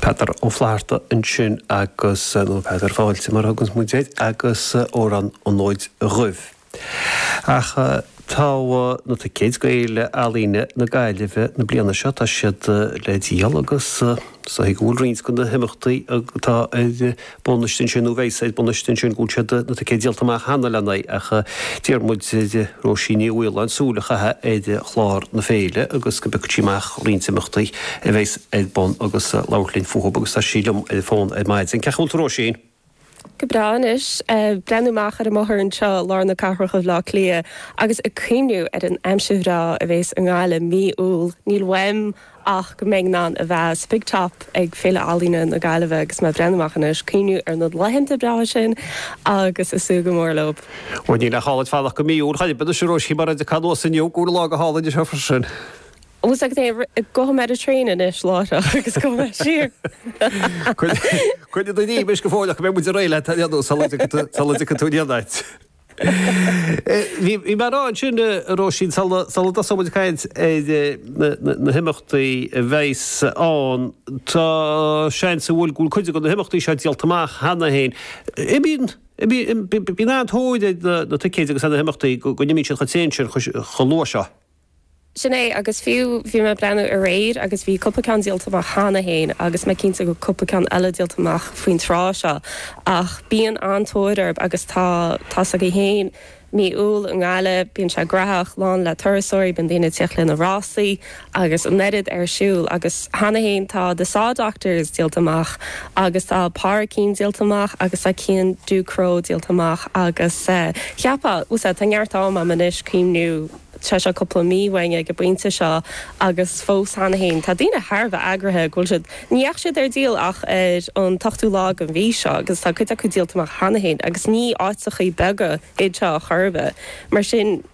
Peadar Ó Flatharta ansin agus, nó Peadar Fáilte mar a thuganns muid air, agus Amhrán an Fhóid Dhuibh. Ach tá na ticéid do Fhéile Ealaíne na Gaillimhe na bliana seo, tá siad le díol agus is dóigh go bhfuil roinnt de na himeachtaí atá ar bun istigh ansin nó a bheas ar bun istigh ansin go bhfuil siad na ticéid díolta amach cheana lena n-aghaidh ach d'iarr muid ar Róisín Ní Mhaoláin súil a chaitheamh ar chlár na féile agus go bpiocfadh sí amach roinnt imeachtaí a bheas ar bun agus labhairt linn fúthub agus tá sí liom ar an bhfón ar maidin. Cén chaoi a bhfuil tú, a Róisín? Go breá anois. Ag breathnú amach ar an mbóthar anseo i lár na cathrach i mBleá Cliath agus ag cuimhniú ar an aimsir bhreá a bhéas i nGaillimh mí Iúil níl uaim ach go mbeidh mé in ann a bheith sa big top ag Féile Ealaíne na Gaillimhe agus mé ag breathnú amach anois, ag cuimhniú ar na laethanta breátha sin agus ag súil go mór leob. Bhuel, níl aon chall agat fanacht go mí Iúil ar chaoi ar bith anois, a Róisín, mar dá dtiocfá anuas inniu, go bhfuil lá go hálainn anseo freisin. Bhuel, tá's agat, gabhfaidh mé ar an traein anois láithreach agus gabhfaidh mé siar. Coinnigh do ghreim anois go fóilleach go mbeidh muid réidh leat ar aon nós sula dtiocfaidh tú aniar duit. Bhí mé ag rá ansin, a Róisín, sula dtosaíonn muid ag caint ar na himeachtaí a bheas ann, tá seans go bhfuil cuid de na himeachtaí seo díolta amach cheana féin. Bíonn an-tóir ar na ticéid agus ar na himeachtaí go n-imíonn siad chomh tréan sin chomh luath seo. Sin é, agus fiú bhí mé ag breathnú aréir agus bhí cúpla ceann díolta amach cheana féin agus mé cinnte go bhfuil cúpla ceann eile díolta amach faoin tráth seo, ach bíonn an-tóir orb agus tá, tá's agaibh féin, mí Iúil i nGaillimh, bíonn sé graitheach, lán le turasóirí, bíonn daoine ag tíocht lena rásaí agus an oiread ar siúl agus cheana féin tá The Saw Doctors díolta amach agus tá Páraic Keane díolta amach agus tá Cian Ducrot díolta amach agus cheapfá, sea, tá neart am agam anois cuimhniú. Tá sé cúpla mí uainn ag an bpointe seo agus fós, cheana féin, tá daoine thar a bheith eagraithe go bhfuil siad, ní dheachaigh siad ar díol ach ar an t-ochtú lá den mhí seo agus tá cuid acu díolta amach cheana féin agus ní áiteachaí beaga iad seo chor ar bith. Mar sin.